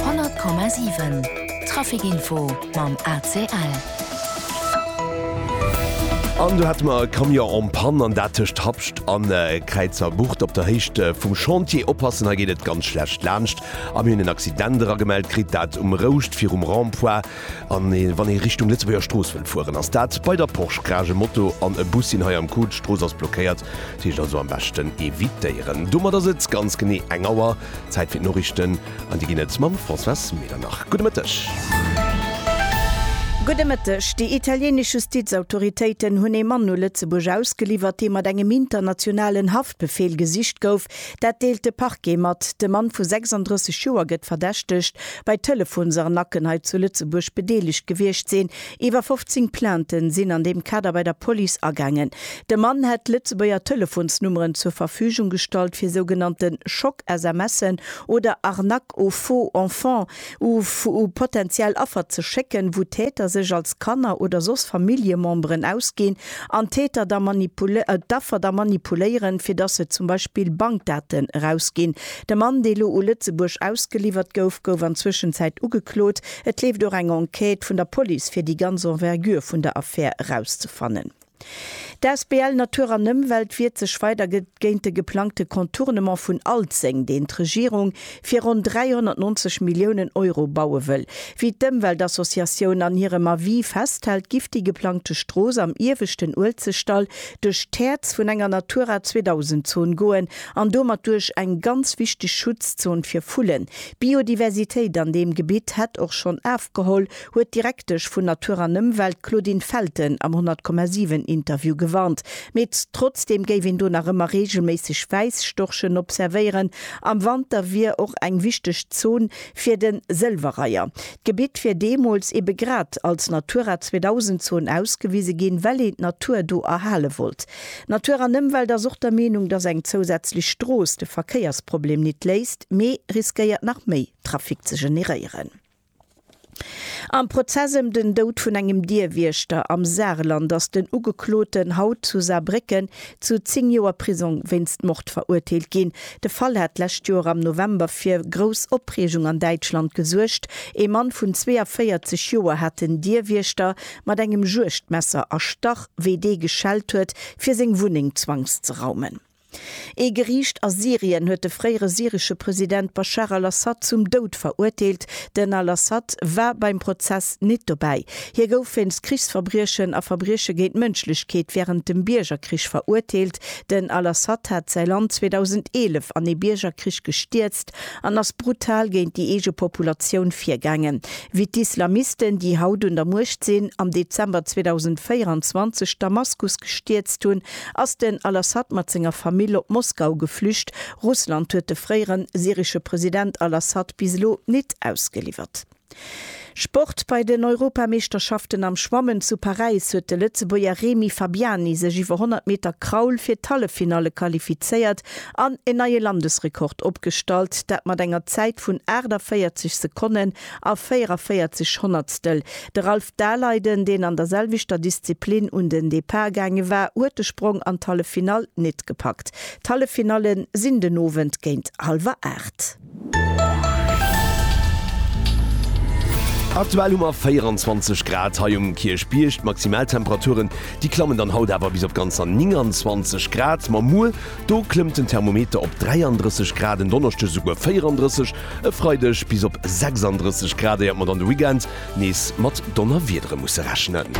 100,7 Trafikinfo mam ACL. An do hat mer e Camion en panne, an dat tëscht Habscht a Kräizerbucht op der Héicht vum Chantier. Oppassen, hei geet et ganz schlecht laanscht a mir hunn en Accident eragemellt kritt, dat um Rouscht virum Rond-point. An wann ee Richtung Lëtzebuerger Strooss wëllt fueren, ass dat bei der Porsch Grage. E Moto an e Bus sinn hei am Coup, d'Strooss ass blockéiert, dat heescht also am beschten evitéieren. Domat ass et ganz genee eng Auer Zäit fir d'Noriichten an déi ginn et mam Françoise Medernach. Gudde Mëtteg. Gudde Mëtteg. Déi italienesch Justizautoritéiten hunn ee Mann u Lëtzebuerg ausgeliwwert, dee mat engem internationalen Haftbefeel gesicht gouf. Dat deelt de Parquet mat. De Mann vu 36 Joer gëtt verdächtegt, bei Telefonsarnacken hei zu Lëtzebuerg bedeelegt gewiescht sinn. Iwwer 15 Plainten sinn an deem Kader bei der Police agaangen. De Mann hätt Lëtzebuerger Telefonsnummeren zur Verfügung gestallt fir sougenannte Schock-SMSen oder Arnaques aux faux enfants u potentiell Affer ze schécken, wou Täter sech als Kanner oder soss Familljememberen ausginn an d'Täter da d'Affer da manipuléieren, fir dass se zum Beispill Bankdaten erausginn. De Mann, dee lo u Lëtzebuerg ausgeliwwert gouf, gouf an Zwëschenzäit ugeklot. Et leeft och eng Enquête vun der Police fir déi ganz Envergure vun der Affär erauszefannen. D'Asbl Natur an Ëmwelt wiert sech weider géint de geplangte Contournement vun Alzeng, deen d'Regierung fir ronn 390 Milliounen Euro baue wëll. Wéi d'Ëmweltassociatioun an hirem Avis festhält, giff déi geplangte Strooss am ieweschten Uelzechtdall duerch d'Häerz vun enger Natura 2000 Zon goen an domat duerch eng ganz wichteg Schutzzon fir Vullen, D'Biodiversitéit an deem Gebitt hätt och schonn afgeholl, huet d'Direktesch vun Natur an Ëmwelt, d'Claudine Felten am 100,7 Interview gewarnt. Mee trotzdeem géif een do nach ëmmer reegelméisseg Wäisstorchen observéieren. Am Wanter wier och eng wichteg Zon fir de Sëlwerreiher. D'Gebitt wier deemools ebe grad als Natura 2000 Zon ausgewise ginn, well een d'Natur do erhale wollt. Natur an Ëmwelt ass och der Meenung, dass eng zousätzlech Strooss de Verkéiersproblem nit léist, mee riskéiert nach méi Trafic ze generéieren. Am Prozess ëm den Doud vun engem Dierwiechter am Saarland ass den Ugekloten haut zu Saarbrécken zu 10 Joer Prisong wéinst Mord verurteelt ginn. De Fall hat d'lescht Joer am November fir grouss Opreegung an Däitschland gesuergt. Ee Mann vun 42 Joer hat den Dierwiechter mat engem Juegdmesser erstach, wéi dee geschellt huet, fir seng Wunneng zwangszeraumen. Ee Geriicht a Syrien huet de fréiere syresche President Baschar al-Assad zum Doud verurteelt. Den al-Assad war beim Prozess nit dobäi. Hie gouf wéinst Krichsverbriechen a Verbrieche géint d'Mënschlechkeet wärend dem Biergerkrich verurteelt. Den al-Assad hat säi Land 2011 an ee Biergerkrich gestierzt an ass brutal géint déi eege Populatioun virgaangen, wéi d'Islamisten, déi haut un der Muecht sinn, am Dezember 2024 Damaskus gestierzt hunn, ass den al-Assad mat senger Famill op Moskau geflücht. Russland huet de fréiere syresche President al-Assad bis elo nit ausgeliwwert. Sport, Bei den Europameeschterschaften am Schwammen zu Paräis huet de Lëtzebuerger Remi Fabiani sech iwwer 100 Meter Kraul fir d'Halleffinalle qualifizéiert an en neie Landesrekord opgestallt, dat mat enger Zäit vun 48 Sekonnen a 44 Honnertstel. De Ralph Daleiden, deen an der selwechter Disziplin un den Depart gaange war, huet de Sprong an d'Halleffinall net gepackt. D'Halleffinallen sinn den Owend géint hallwer 8. Aktuell hu mer 24 Grad hei um Kierchbierg. D'Maximaltemperaturen, déi klammen dann haut awer bis op ganzer 29 Grad. Ma muer, do klëmmt den Thermometer op 33 Grad, en Donneschdeg esouguer 34, e Freideg bis op 36 Grad, éiert mer dann de Weekend nees mat Donnerwiedere musse rechnen.